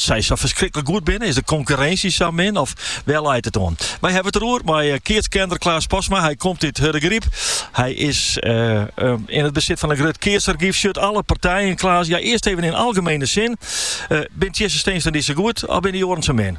sy sa ferskriklik goed binne? Is de konkurrinsje sa min of wêr leit it oan? Wy hawwe it der oer mei eh, keatskenner Klaas Postma. Hy komt út Hurdegryp. Hy is eh, ehm, yn it besit fan in grut keatsargyf. Sjocht alle partijen, Klaas. Ja, earst even yn algemiene sin. Eh, binne Tjisse Steenstra-en-dy sa goed, of binne de oaren sa min?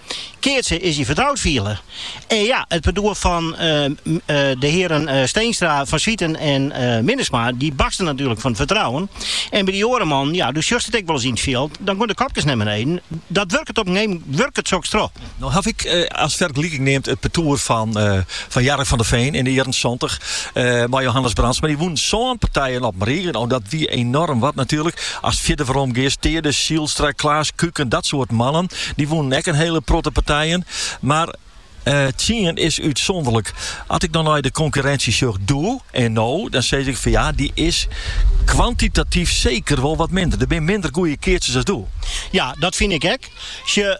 Keatsen is dy fertroud fiele. En ja, it partoer fan de hearen Steenstra, Van Zwieten en Minnesma, dy barste natuerlik fan it fertrouwen. En by dy oare mannen, ja, do sjochst it ek wolris yn it fjild, dan geane de kopkes nei beneden. Dat wurket op in gegeven momint wurket soks troch. No haw ik as fergeliking neamd it partoer fan. Fan Gerrit van der Veen yn de jierren santich mei Johannes Brandsma. Mar dy wûnen sân partijen op 'e rige. No, dat wie enorm wat natuerlik. Ast fierder werom giest, Taede Zijlstra, Klaas Kuiken, dat soart mannen, dy wûnen ek in hiele protte partijen. Mar tsien is útsûnderlik. As ik no nei de konkurrinsje sjoch doe en no, dan sis ik fan ja, dy is kwantitatyf seker wol wat minder. Der binne minder goede keatsers as doe. Ja, dat fyn ik ek. Sjoch,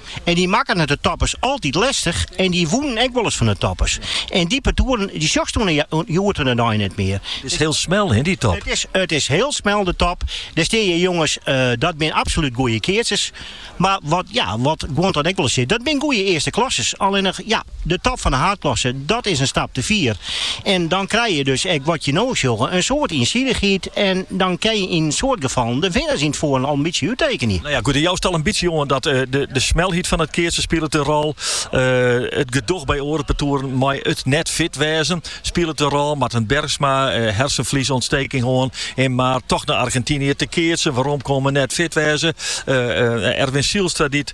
En dy makken it de toppers altyd lestich en dy wûnen ek wolris fan de toppers. En dy partoeren dy sjochst hjoed-de-dei net mear. It is hiel smel hin dy top. It is hiel smel de top. Dêr steanje jonges, dat binne absolút goeie keatsers. Mar wat ja, wat guon dan ek wolris sizze, dat binne goeie earsteklassers. Allinnich ja, De top fan de haadklasse, dat is in stap te fier. En dan krije je dus ek wat je no sjogge, in soad iensidichheid. En dan kin je yn in soad gefallen de winners yn it foaren al in bytsje úttekenje. No ja, goed, jo stelle in bytsje oan dat de smelheid fan it keatsen spilet in rol. It gedoch by oare partoeren mei it net fit wêzen spilet in rol. Marten Bergsma, hersenfliesûntsteking hân en mar toch nei Argentinië te keatsen, weromkomme, net fit wêze. Erwin Zijlstra dy't